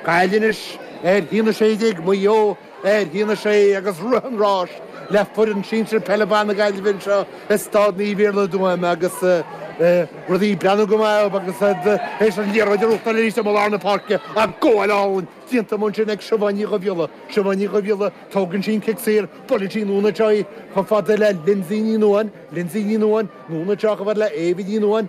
Gaillimh anois, ar a haon a 16 Maigh Eo, ar a haon a 6 agus rith an ráis le foireann sinsir peile ban na Gaillimhe anseo i Stáid Naomh Iarlaith i dTuaim agus rudaí ag breathnú go maith dóibh agus fhad is an liathróid ar uachtar arís amuigh i lár na páirce ach gabháil álainn déanta amach ansin ag Siobhán Ní Dhubhghiolla. Siobhán Ní Dhubhghiolla, tógann sí an cic saor, buaileann sí anonn anseo í chomh fada le Lindsay Ní Nuáin, Lindsay Ní Nuáin, anonn anseo chomh fada le Éabha Ní Nuáin,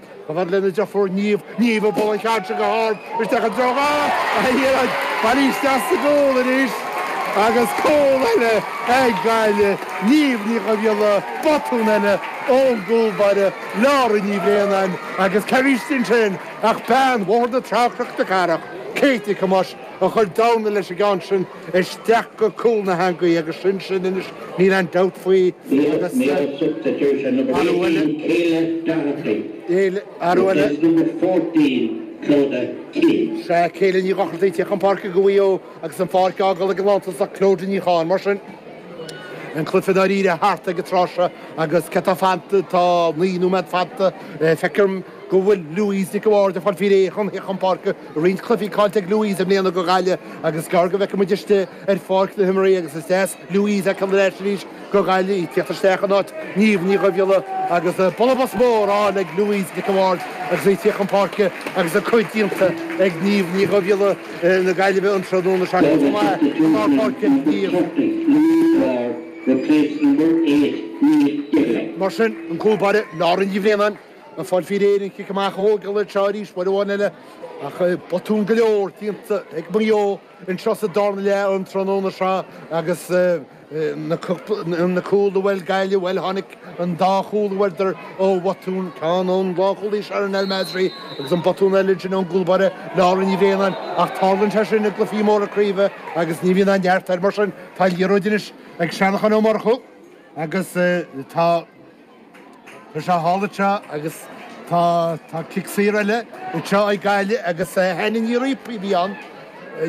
Chomh fada lena deirfiúr Niamh, Niamh ag bualadh an cheann seo go hard isteach i dtreo na heangaí. Buailte isteach sa gcúl arís agus cúl eile ag Gaillimh, Niamh Ní Dhubhghiolla, botún eile ón gcúl báire, Laura Ní Bhraonáin agus cé bhí istigh ansin ach bean Bhóthar na Trá Chnoc na Cathrach, Kate Nic Thomáis a chuir dorna leis an gceann sin. isteach go cúl na heangaí agus sin sin, anois níl aon dabht faoi agus sa. Athrú eile, níl athrú eile. Sea, Kayla Ní Dhochartaigh, ag tíocht chun páirce go Mhaigh Eo agus an pháirc á fágáil ag an lántosach Clodagh Ní Chatháin. Mar sin, an cluiche i ndáiríre thart ag an tráth seo agus céard atá fanta, tá naoi nóiméad fanta, feicim, go bhfuil Louise Nic an Bhaird ag fáil faoi réir chun tíocht chun páirce roinnt cluichí caillte ag Louise i mbliana go Ghaillimh agus gearr go bhfeicfidh muid istigh ar pháirc na himeartha agus is deas Louise a fheiceáil ar ais arís go Ghaillimh í ag tíocht isteach in áit Niamh Ní Dhubhghiolla agus bualadh bos mór á fháil ag Louise Nic an Bhaird agus í ag tíocht chun páirce agus a cuid déanta ag Niamh Ní Dhubhghiolla na Gaillimhe an tráthnóna seo chomh maith i lár páirce Niamh. Louise Ward replaced number eight Niamh Divilly. Mar sin, an cúl báire, Laura Ní Bhraonáin, Ag fáil faoi réir an cic amach a thógáil anseo arís uair amháin eile, ach botúin go leor déanta ag Maigh Eo anseo sa dara leath an tráthnóna seo agus na cúil a fuair Gaillimh, bhuel, tháinig an dá chúl a fuaireadar ó bhotúin, ceann ón lánchúlaí Sherin El Massry agus an botún eile sin ón gcúlbáire Laura Ní Bhraonáin, ach tarlaíonn sé sin i gcluichí móra craoibhe agus ní bhíonn aon neart air. Mar sin, tá an liathróid anois ag Seanachán Ó Murchú agus tá. Tá sé thall anseo agus tá cic saor eile anseo ag Gaillimh agus Hannah Ní Ríophaigh a bhí ann.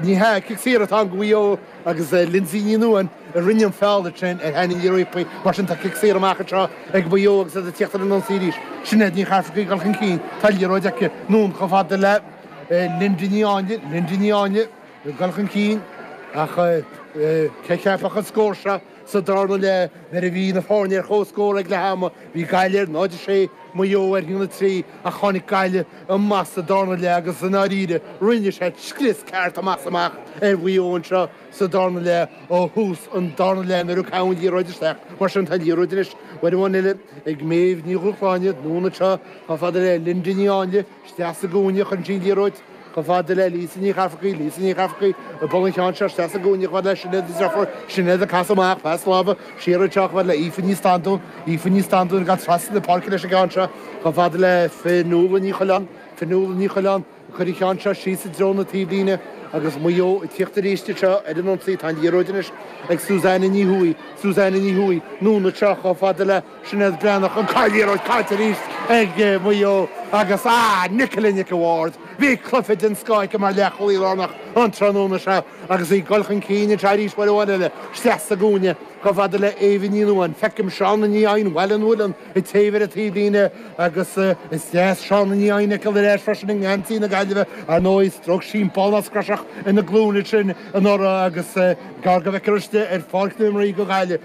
Ní hea, cic saor atá ann go Mhaigh Eo agus Lindsay Ní Nuáin a rinne an feall ansin ar Hannah Ní Ríophaigh. Mar sin, tá cic saor amach anseo ag Maigh Eo agus iad ag tíocht ar an ionsaí arís. Sinéad Ní Charthaigh ag dul chun cinn, tá an liathróid aici anonn chomh fada le Linda Ní Áinle, Linda Ní Áinle ag dul chun cinn ach cé a cheapfadh an scór seo? Sa darna leath, nuair a bhí na foirne ar chomhscór ag leath ama, bhí Gaillimh ar 0, 6, Maigh Eo ar a haon a 3, ach tháinig Gaillimh amach sa darna leath agus i ndáiríre, rinne siad scrios ceart amach is amach ar Mhaigh Eo anseo sa darna leath. Ó thús an darna leath, nuair a caitheadh an liathróid isteach, mar sin tá an liathróid anois, uair amháin eile, ag Méabh Ní Dhúshláine, anonn anseo, chomh fada le Linda Ní Áinle. Isteach sa gcúinne cuireann sí an liathróid chomh fada le Lisa Ní Charfaigh, Lisa Ní Charfaigh ag bualadh an cheann seo, isteach sa gcúinne chomh fada le Sinéad Ní Dhiofair, Sinéad ag casadh amach pas láimhe siar anseo chomh fada le Aoife Ní Standún, Aoife Ní Standún ag casadh trasna na páirce leis an gceann seo chomh fada le Fionnuala Ní Choileáin, Fionnuala Ní Choileáin ag cur an cheann seo síos i dtreo na taobhlíne agus Maigh Eo ag tíocht arís anseo ar an ionsaí. Tá an liathróid anois ag Suzanne Ní Thuathaigh, Suzanne Ní Thuathaigh, anonn anseo chomh fada le. Sinéad Breathnach, ach an liathróid caillte arís ag Maigh Eo agus, ah, Nicola Nic a' Bhaird! Bhí cluiche den scoth aici mar leathchúlaí lárnach an tráthnóna seo agus í ag dul chun cinn anseo arís uair amháin eile. Isteach sa gcúinne. Chomh fada le Eva Ní Nuadháin. Feicim Shauna Ní Eidhin, bhuel, an bhfuil an taobh ar an taobhlíne agus is deas Shauna Ní Eidhin a fheiceáil ar ais freisin i ngeansaí na Gaillimhe. Ar ndóigh, stróic sí an ballnasc croiseach ina glúin ansin anuraidh agus gearr go bhfeicfear aríst í ar pháirc na himeartha do Ghaillimh.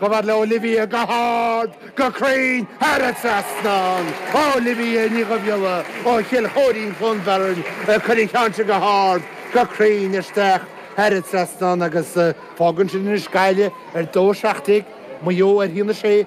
Chomh fada le Olivia go hard, go cruinn, thar an trasnán. Olivia Ní Dhubhghiolla ó Chill Choirín Chluain Bheirn ag cur an cheann seo go hard, go cruinn isteach thar an trasnán agus. Fágann sin anois Gaillimh ar dó seacht déag Maigh Eo ar a haon a sé.